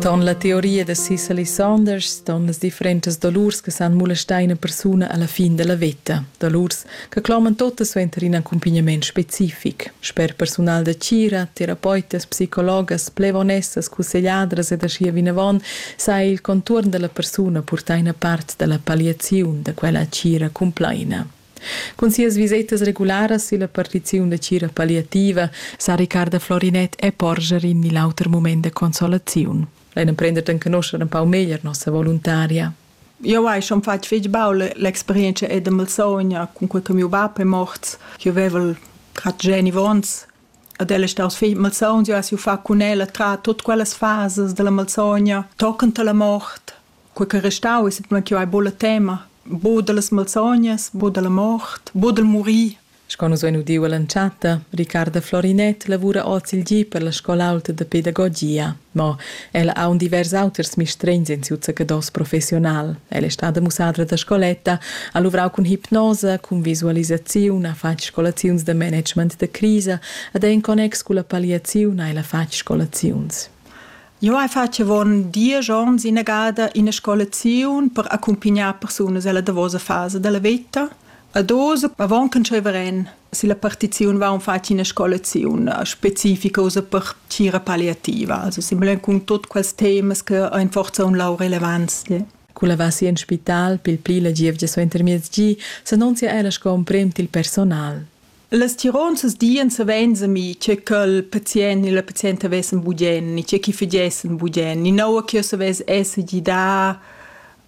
Ton la teoria da Cicely Saunders ston las differentas dolurs che san molestar ina persuna alla fin della veta, dolurs che cloman totas suenter in accompagnament specific, sper personal da tgira, terapeutias, psicologas, plevonessas, cussegliadras ed aschia vinavon sa il contuorn dalla persuna purtar ina part dalla palliaziun da quella tgira cumplaina. Cun sias visetas regularas illa partiziun da cira palliativa sa Riccarda Florinet e porscher in ni l'auter mument da consolaziun. Ein emprender d'enconoscher un pau meglier nossa voluntaria. Eu hai schon fatg fich baul l'experienza e da Malsogna cun quel che miu bap è morts. Io avevel grad geni vons ad ella staus figl Malsogna, eu ha siu fa cun ella tra tot quellas fasas della Malsogna, toccant la mort, quei ch'ei restau es semplamein ch'jeu hai buca tema, buca dallas malsognas, buca dalla mort, buca dal murir. Sco nus vein udiu ell'entschatta, Riccarda Florinett lavura oz il gi per la scola aulta da pedagogia, mo ella ha aunc divers auters mistregns en siu zaccados professional. Ella è stada mussadra da scoletta, ha luvrau cun hipnosa, cun visualisaziun, ha fatg scolaziuns da management da crisa ed er in connex culla palliaziun ha ella fatg scolaziuns. Jo hai fatg avon diesch onns ina gada ina scolaziun per accumpignar persunas ella davosa fasa della veta. A dos avon che tscheva ren si la partiziun va un fatg ina scolaziun specifica usa per tgira palliativa, also simulin cun tot quels temas che ein forza un lau relevants. Quella va si en spital pil pli la gievgia suenter miezgi, s'annunzia ella sco emprem til personal. Las tironzas dien savens ami che quel pazient ni la pazienta vessen bugien ni che chi fagessen bugien ni naua che savess esser gida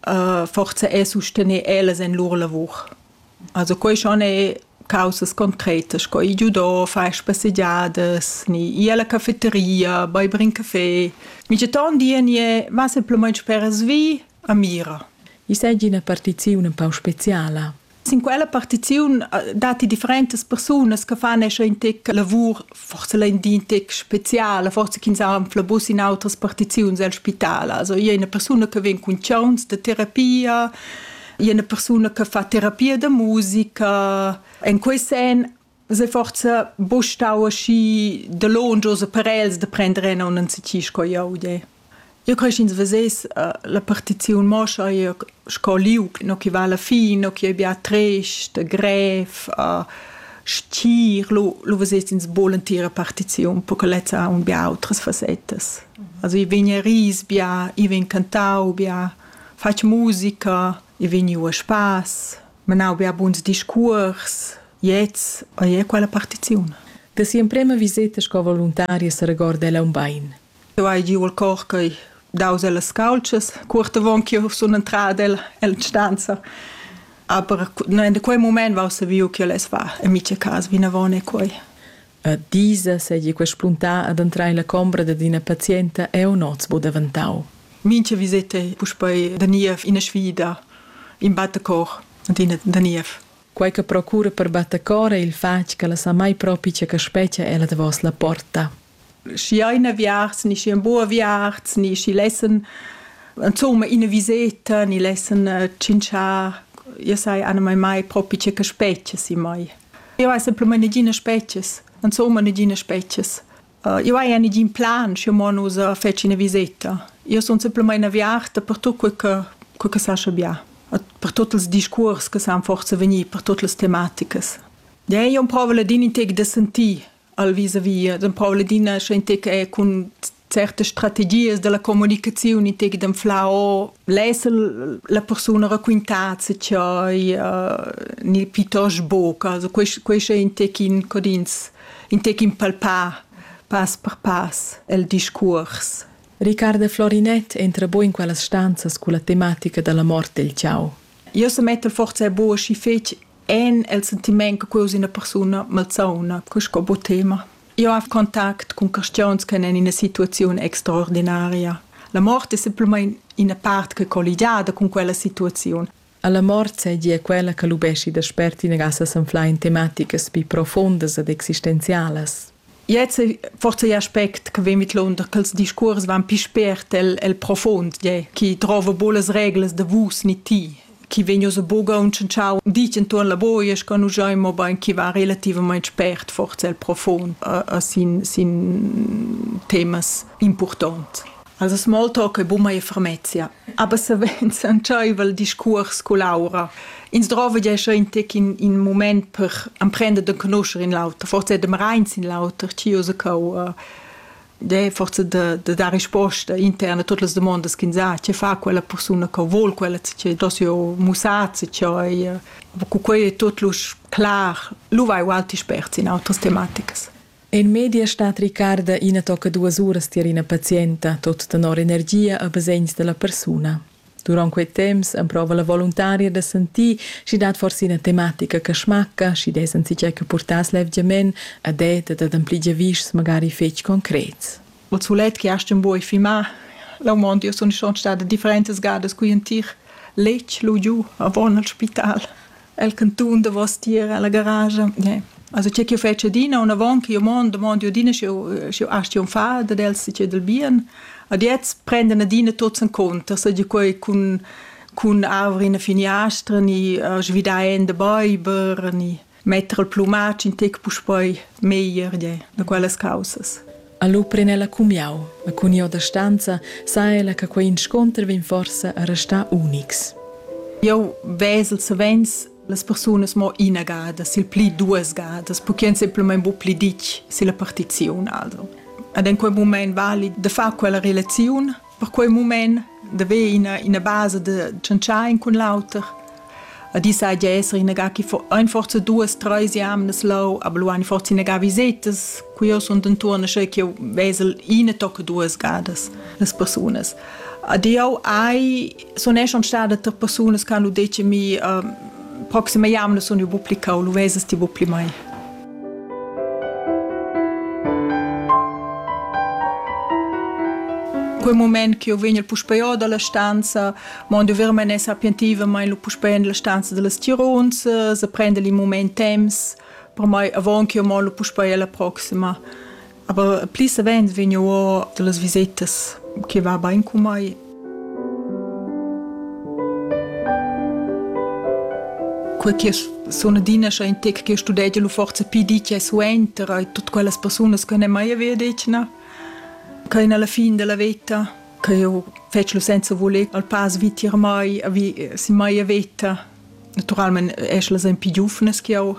uh, forza e sustener ellas en lur lavur. Also quei schon è causas concretas, co i giudò, fai spassegiadas, ni i alla cafeteria, bei brin caffè. Mi c'è ton die ni è ma semplicemente per svi a mira. I sai una partizione un po' speciale. Sin quella partiziun eh, datti differentas persunas che fanno in tic lavur, forse ein di tic speziale, forse ch'ins ha un flabus in altre partizioni al spitale. Also io una persona che viene con chance de terapia, io una persona che fa terapia de musica. In quei sen Se forza bu stau aschi dalongios per els da prender en un anzichi sco jeu de. Io cresch ins vesess uh, la partiziun mo scha io sco liug no chi va alla fin, no chi ei bia trist, grev, uh, stier, lu, lu vesess ins bol entira partiziun, perché lezza ha un bia outras facetas. Also i vegn a ris bia, i vegn cantau bia, fatg musica, i vegn u a spass. menau bia buns discuors, gliez ei quella partiziun. Da si'emprema viseta sco voluntaria seregorda ella un bein. Eu hai giu il cor che daus ellas calcias, cuort avon ch'io sun entrada el, el stanza. Aber in quei moment vau saviu che el es va, en mica cas vinavon e quei. A disa seigi quei spuntà ad entrar ella combra dad ina pazienta eu noz bu daventau. Mincha viseta è puspei da niev ina sfida, in battecor ed ina da niev. Quei che procura per battecor ei il fatg ch'ella sa mai propi tge che spetga ella davos la porta. Schi ein aviarts ni schi ein buc aviarts ni schi lessen insomma ina viseta ni lessen tschintschar, io sai anamai mai propi tge che spetga si mai. Eu esa plüma negina spezias, insomma negina spezias. Eu haja negin plan schi mo nus fetschin üna viseta. Io sun simplamaing aviarta per tut que che que che sascha bia, per tuot ils discuors che san forsa vegnir per tuot las tematicas. Dain io prova ladin in tec da sentir al vis-a-vis d'empau ladina scientifica e cun certe strategies della comunicazione in tec dem flau lesa la persona racquintat se chai uh, ni pitos boca also quest quest è in tec in codins in tec in palpar pass per pass el discours Riccardo Florinet entra bo in quellas stanzas culla tematica della morte del ciao Io se metto forza e bo și fec en el sentiment che quei es ina persuna malsauna, che sco bo tema. Io ho contact con questiuns che en ina situazione extraordinaria. La morte è semplicemente una parte che è collegata con quella situazione. Alla morte seigi è quella che lubesci da spert in gassa sanfla in tematiche pi profondas ed existenzialas. Jetzt forse aspect che vegn vidlunder ch'els discuors van pi spert el, el profond, gie, chi drova buca las reglas da vus ni ti, chi vegn uss buca untschentschau ditg entuorn la buoia sco nus giain mobein chi va relativamain spert forse el profond a, a sin, sin temas impurtont. Els smoltoc e buma e fermezia. Aber savens entscheiva il discuors cu Laura. Ins drova gia schon in tec in, in moment per emprender de conoscer in l'auter, forse de reins in l'auter, ci usa cau de forse de, de dar risposta interna a tutte le domande che sa che fa quella persona che vuol quella che dosio musazzi che cu quei è tutto clar lu vai ualti spert in altre tematiche En media stat Ricarda ina tocca duas uras tier ina pazienta, tot tenor energia e basegns dalla persuna. Duront quei temps emprova la voluntaria da sentir sch'i dat forse ina tematica che smacca, sch'i dess anzitgei che purtass levgiament ad et ed ad ampli giavischs magari fetg concrets. O sulet che hast buca filmà la mond, io sun schon stada differentas gadas cugl entir letg lu giu avon al spital. el cantun davostier ella garage yeah. also che ch'io fetsch adina unavon che io mond mond io adina sche sche astio far da els che del bien ad jetzt prenden adina tots in conto so di quei cun cun avrin a finiastra ni uh, svidaen de beiber ni metter il plumatsch in tec puspoi meglier yeah, da quellas causas Allo pren ella cumiau, ma cun io da stanza sa ella che quei inscunter vegn forsa a restar unics. Eu vesel savens las persunas mo ina gada, sil pli duas gadas, perché semplamain bu pli ditg silla partiziun aldo. Ad en quel mument vali de far quella relaziun Per quei mument deve ina ina basa de tschentschar in cun l'auter. Ad isa ja esser inaga chi fo ein forza duas treis jamnas lau, aber lu ein forza inaga visetas, qui io sunt intuorn sche ch'io vesel ina tocca duas gadas las persunas. Ad io ai sun e schon stada tre persunas che hanno detto mi uh, proxima jamna sun io bu pli cau, lu vesas ti bu pli mai. quel moment che io vegn puspei o dalla stanza, mo io ver men sapientiva mein lu puspei in la stanza dallas Tirons, se prende il moment temps, per mai avon che io mo lu puspei alla proxima. Aber pli savens vegno o las visetas che va bain con mai. Quel che sono dina schon in tec che studiate lu forza più di che suenter e tutte quelle persone che non mai aveva detto no che alla fine della vita che io faccio senza voler al pass vitir mai vi si mai vita naturalmente è la più giovane che ho